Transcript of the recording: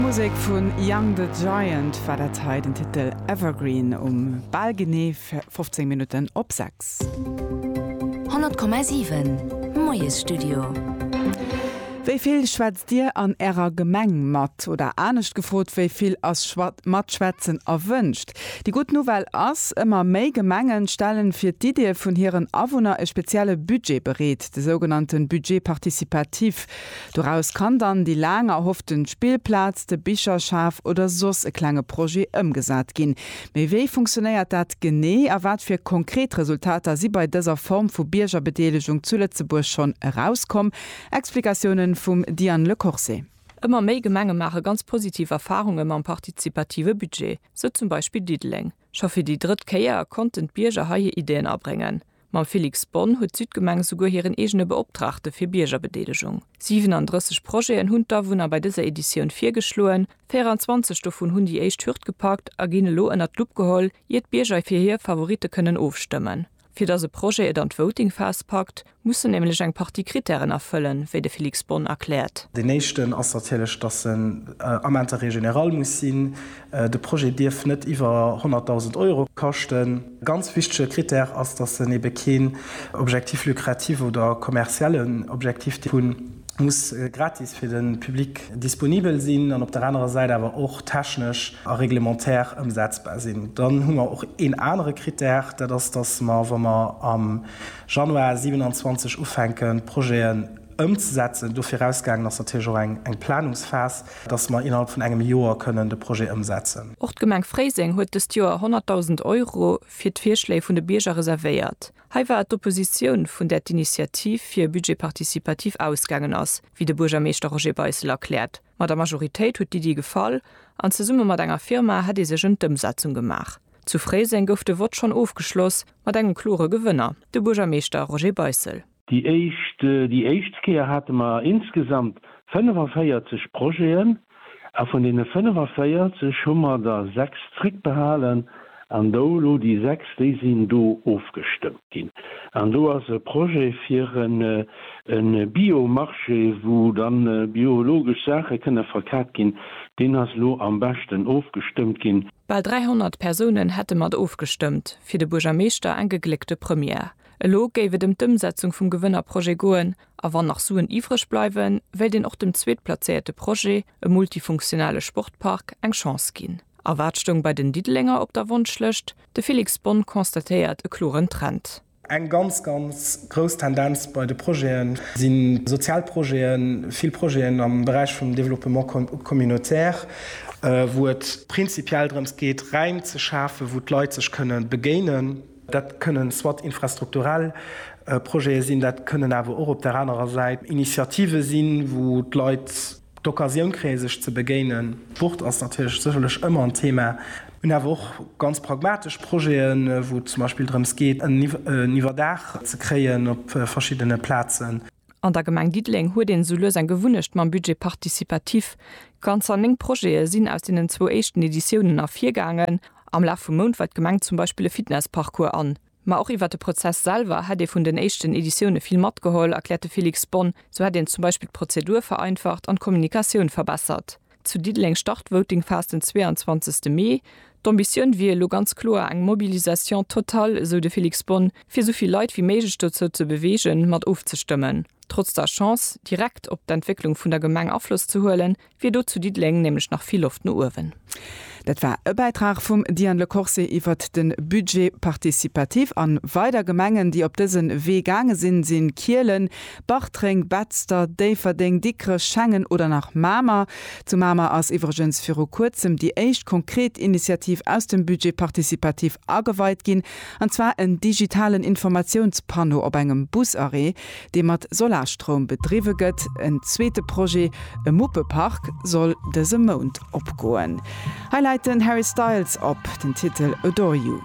Musek vun Young the Giant war dat hei, den Titel Evergreen um bal genee 15 Minutten op 6. 100,7 Moiesstudio. Wéi vill schwätzt Dir an Ärer Gemeng mat? Oder anescht gefrot, wéi vill ass Schwat Matschwätzen erwënscht? Déi gutt Nouvelle ass, Ëmmer méi Gemenge stellen fir d'Iddie vun hiren Awunner e spezielle Budget bereet, de sougenannte Budget participatif. Doraus kann dann déi laang erhofften Spillplaz, de Bicherschaf oder soss e klenge Projet ëmgesat ginn. Mee wéi funktionéiert dat genee a wat fir konkret Resultater si bei dëser Form vu Biergerbedeelegung zu Lëtzebuerg schonn erauskomm? Explikatiounen vum Diane Le Corse. Ëmmer méi Gemenge maache ganz positiv Erfarunge mam partizipative Budget, sou zum Beispill Diddeleng. Scho fir déi drëtt Kéier konnten d'Bierger hei hir Ideen abréngen. Mam Félix Bonne huet d'Südgemeng esouguer hiren eegene Beoptraagte fir Biergerbedeelegung. 37 Projeten hunn d'Awunner bei dëser Editioun virgeschloen. 24 dovun hunn déi éischt Hürd gepackt a ginn elo ënnert d'Lupp geholl, ier d'Bierger fir hir Favoritte kënnen ofstëmmen. Fir datt e Projet et an d'Voting-Phas packt, muss en nämlech eng Partie Krittären erfëllen, wéi de Félix Bonne erkläert. Deen éischten ass natierlech, datt en am Intérêt général muss sinn. De Projet dierf net iwwer 100.000 Euro kaschten. E ganz wichtege Krittär ass, datt en ebe keen Objectif lucratif oder kommerziellen Objectif dierf hunn. muss gratis fir de Public disponibel sinn an op der anerer Säit awer och technesch a reglementaire ëmsetzbar sinn. Dann hu mer och een anere Krittär, dat ass, dass mer, wa mer am Januar 27 ufänken, d'Projeten ëmzesetzen, do virausgaangen ass natierlech och eng Planungsphas, dass mer innerhalb vun engem Joer kënnen de Projet ëmsetzen. Och d'Gemeng Fréiseng huet dëst Joer 100.000 Euro fir d'Virschléi vun de Bierger reservéiert. Hei war et d'Oppositioun, vun där d'Initiativ fir e Budget participatif ausgaangen ass, wéi de Buergermeeschter Roger Beissel erkläert. Mat der Majoritéit huet d'Iddi gefall an zesumme mat enger Firma hätt ee sech ëm d'Ëmsetzung gemaach. Zu Fréiseng gouf de Vott schonn ofgeschloss mat engem klore Gewënner, de Buergermeeschter Roger Beissel. Déi éischt Kéier hate mer insgesamt 45 Projeten, A vun deene 45 hu mer der sechs zréckbehalen an do elo déi sechs, déi sinn do ofgestëmmt ginn. An do ass e Projet fir e Bio-Marché, wou da biologesch Saache kënne verkat ginn, deen ass elo am beschten ofgestëmmt ginn. Bal 300 Persounen hätte mat ofgestëmmt, fir de Buergermeeschter eng gegléckte Première. Elo géif et ëm d'Ëmsetzung vum Gewënner-Projet goen, A wann nach Suen iwwreg bleiwen, wéilt een och dem zweetplazéierte Projet, e multifunktionale Sportpark, eng Chance ginn. A wat stoung bei den Diddelenger op der Wonschlëscht? De Felix Bonne constatéiert e kloren Trend. Eng ganz, ganz grouss Tendenz bei de Projete si sozial Projeten, vill Projeten am Beräich vum Développement communautaire, wou et prinzipiell drëms geet, Räim ze schafen, wou d'Leit sech kënnen begéinen. Dat kënnen soit infrastrukturell Projete sinn, dat kënnen awer och op där anerer Säit Initiative sinn, wou d'Leit d'Occasioun kréie sech ze begéinen. D'Wuert ass natierlech sécherlech ëmmer en Thema. Mir hunn awer och ganz pragmatesch Projeten, wou et zum Beispill drëms geet en Iwwerdaach ze kréien op verschiddene Plazen. An der Gemeng Diddeleng huet een esou lues eng Gewunnecht mam Budget participatif. Ganzer 9 Projete sinn aus deenen zwou éischten Editiounen ervirgaangen. Am Laf vum Mount weist d'Gemeng zum Beispill e Fitnessparcours an. Ma och iwwert de Prozess selwer hätt ee vun den éischten Editioune vill matgeholl, erkläert de Félix Bonne. Sou hätt een zum Beispill d'Prozedur vereinfacht an d'Kommunikatioun verbessert. Zu Diddeleng start d'Votingphas den 22 Mee. D'Ambitioun wier elo ganz kloer eng Mobilisation totale, esou de Felix Bonn, fir esou vill Leit wéi méiglech dozou ze beweegen, mat ofzestëmmen. Trotz der Chance, direkt op d'Entwécklung vun der Gemeng Afloss ze huelen, wier do zu Diddeleng nämlech nach vill Loft no uewen. Dat war e Bäitrag vum Diane Le Corse iwwert de Budget participatif. A weider Gemengen, déi op dëse Wee gaange sinn, si Kielen, Bartreng, Betzder, Déifferdeng, Dikrech, Schengen oder nach Mamer. Zu Mamer ass iwwregens viru Kuerzem déi éischt konkret Initiativ aus dem Budget participatif ageweit ginn, an zwar en digitalen Informatiounspanneau op engem Busarrêt, dee mat Solarstroum bedriwwe gëtt. En zweete Projet, e Muppepark, soll dëse Mount opgoen. Hei läit den Harry Styles op, den Titel Adore You.